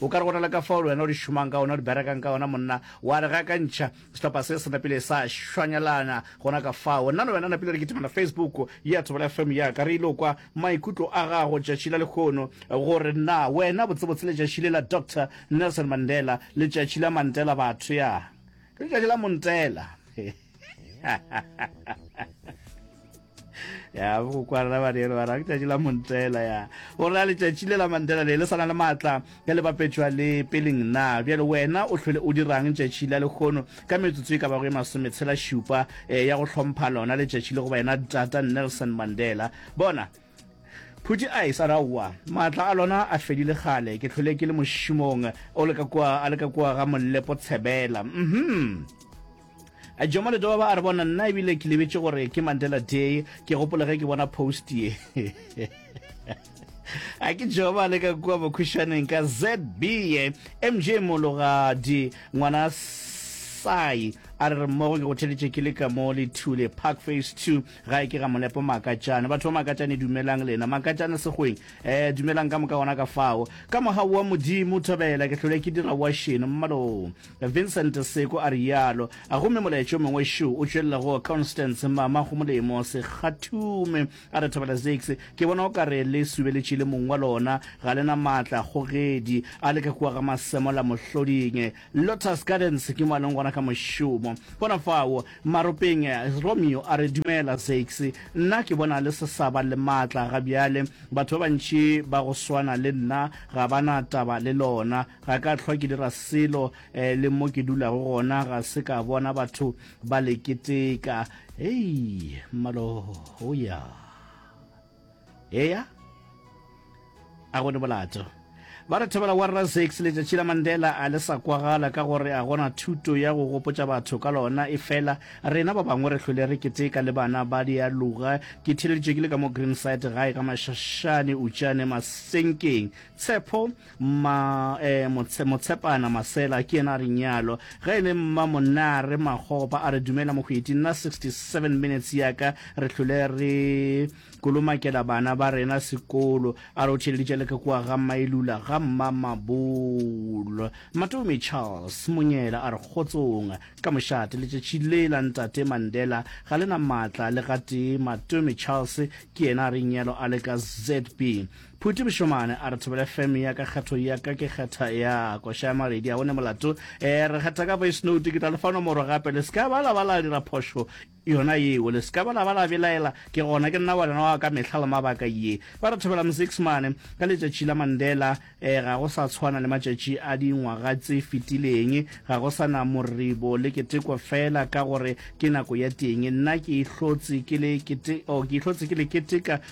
O ka re go na le ka fao le wena o di šomang ka ona, o di berekang ka ona, monna, wa re ga ka ntšha, sehlopha se se napile sa šwanyelana gona ka fao. Nna le wena napile re kitimela Facebook ya Thobela FM ya ka, re ile kwa maikutlo a gago tšatši la lekgono, gore na wena botsebotse letšatši le la Doctor Nelson Mandela, letšatši la Mantela batho, ya, ke letšatši la Montela. ya go kwarela badere ba ra letšatši la montela ya o ra letšatši le la mantela le le sana le maatla ka le bapetšwa le peleng na bjale wena o tlhole o dirang letšatši la lekgono ka metsotso e ka bago e masometshela šupa eh, ya go hlompha lona letšatši le go wena tata nelson mandela bona phuti a e sa raowa maatla a lona a fedile gale ke tlhole ke le mošomong o le ka kua a le ka kua ga mollepo tshebela mhm mm Jomo Ledoba a re bona nna ebile ke lebetše gore ke Mandela Day ke gopole ge ke bona post ye a ke joba le ka kua bokhušwaneng ka zb ye mj mologadi ngwana sai a re re mmogo ke go theletše ke le ka mo le thule park face two ga e ke ga molepo makatšane batho ba makatšane dumelang lena makatšane segweng um dumelang ka moka gona ka fao ka mogau wa modimo thobela ke tlhole ke dira wa šeno mmaloo Vincent Seko a realo. Gomme molaetša o mongwe šo o tšwelela go Constance, mama go molemo, Sekgathume a re, Thabela Zakes, ke bona o ka re le subeletše le mong wa lona. Ga le na matla, kgogedi a le ka kua ga Masemola mohloding. Lotus Gardens ke mo a leng gona ka mošomo. Gona fao maropeng, Romeo a re, Dumela, Zakes. Nna ke bona le se sa ba le matla ga bjale. Batho ba bantši ba go swana le nna ga ba na taba le lona. Ga ka hlwa ke dira selo, eh, le mo ke dulago gona ga se ka bona batho ba le keteka. Hei, mmalo, oh ya. Eya? A gone bolato. Ba re thobela wa Razex letšatši la Mandela a le sa kwagala ka gore a gona thuto ya go gopotša batho ka lona e fela rena ba bangwe re hlwele re keteka le bana ba dialoga ke theleditše ke le ka mo Greenside gae ka mašašane utšane masenkeng tshepo Mma eh, Motshe, Motshepana Masela ke yena a reng yalo. Ge e le mma Monare Magopa a re dumela mohweti, nna 67 minutes yaka re hlole re kolomakela bana ba rena sekolo. A re o theleditše le ke kwa ga Mailula ga mma Mabolo. Matomi Charles Monyela a re kgotsong ka mošate letšatši le la ntate Mandela ga le na maatla le gatee. Matomi Charles ke yena a reng yalo a le ka ZB. Phuti Bošomane a re thobele fm ya ka kgetho ya ka ke kgetha ya koša ya maledi a one molato e re kgetha ka voice note ke tla le fa nomoro gape le ska ba la ba la dira phošo yona yeo le ska ba la ba la belaela ke gona ke nna ngwana wa ka mehla le mabaka ye ba re thobela mosixmane ka letšatši la mandela e ga go sa tshwana le matšatši a dingwaga tse fetileng ga go sa na moribo le keteko fela ka gore ke nako ya teng nna ke ihlotse ke le kete o oh, ke ihlotse ke le keteka